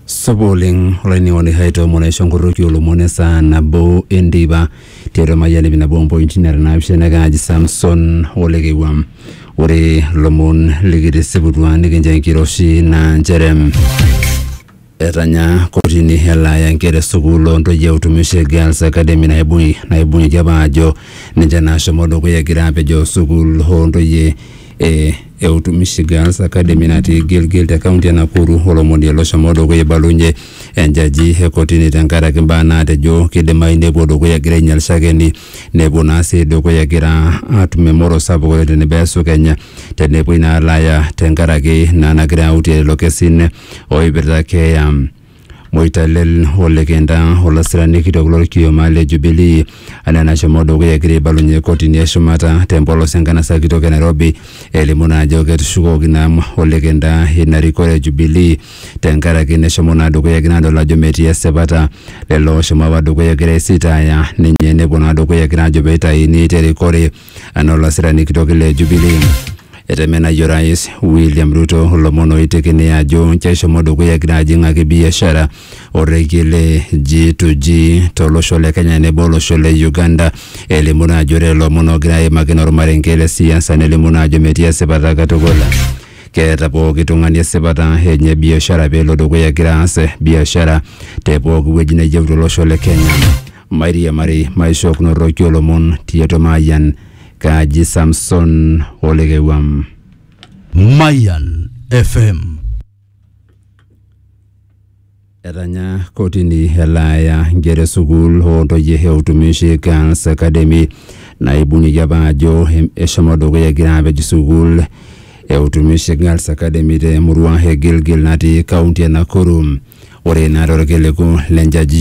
Supa oleng olainining'oni hai toomon aisho enkorroki olomon esaa nabo enteipa tiatua mayian ipi nabo ompointi nara naapishana naa kaaji Samson ole Keiwuam. Ore lomon likitisiputua nikincho enkiroshi naa nchere etanya kotini elaaya nkera e sukuul o ntoyie e Utumishi Girls Academy naibung'i naibung'ieki apa aajo ninche naashomo dukuya egira apejoo sukuul oo ntoyie e eutu Michigan's Academy natii Gilgil te kaunti e Nakuru olomoni loshomo dukuya eibalunye enjaji e kotini tenkaraki mbaa naatejo kidimayu nepuo dukuya egira ainyal shakeni nepuo naa sii dukuya egira atum emoro sapuk oleng tenebo esu Kenya tenepuoi naa alo aya tenkaraki naa nagira autie lelo kesin oipirta keeya Moitalel olikinda olasirani kitok lolkioma le Jubilee anaa enashomo dukuya egira aibalunye kotini e shumata te mpolos enkanasa kitok e Nairobi elimu naa ajo ketushukoki naa olikinda ina rikore e Jubilee tenkaraki neshomo naa dukuya egira adol ajo metii esipata lelo ooshomo apa dukuya egira aisitaaya ninye nepuo naa dukuya egira aajo peitaini te rikore anaa olasirani kitok le Jubilee. Etemenayie orais William Ruto ilomon oitekini ajo nche eshomo dukuya egira ajing'aki biashara orrekie le G2G tolosho le Kenya nebo olosho le Uganda. Elimu naa ajo ore lelo omon oogira aimaki naa ormarenke le siasa nelimu naa ajo metii esipata katukul. Keeta pooki tung'ani esipata enye biashara pelo dukuya egira aas biashara te pooki wueji neyieu tolosho le Kenya. Mairiamari maishookinoroki olomon tiatua Mayian kaaji Samson Olekewuam. Mayan FM. Etanya kotini elaaya nkera e sukuul oo ntoyie e Utumishi Girls Academy naibung'ieki apa ajo em- eshomo dukuya egira apej sukuul e Utumishi Girls Academy te murua e Gilgil natii kaunti e Nakuru. Ore naa torkiliku le njajio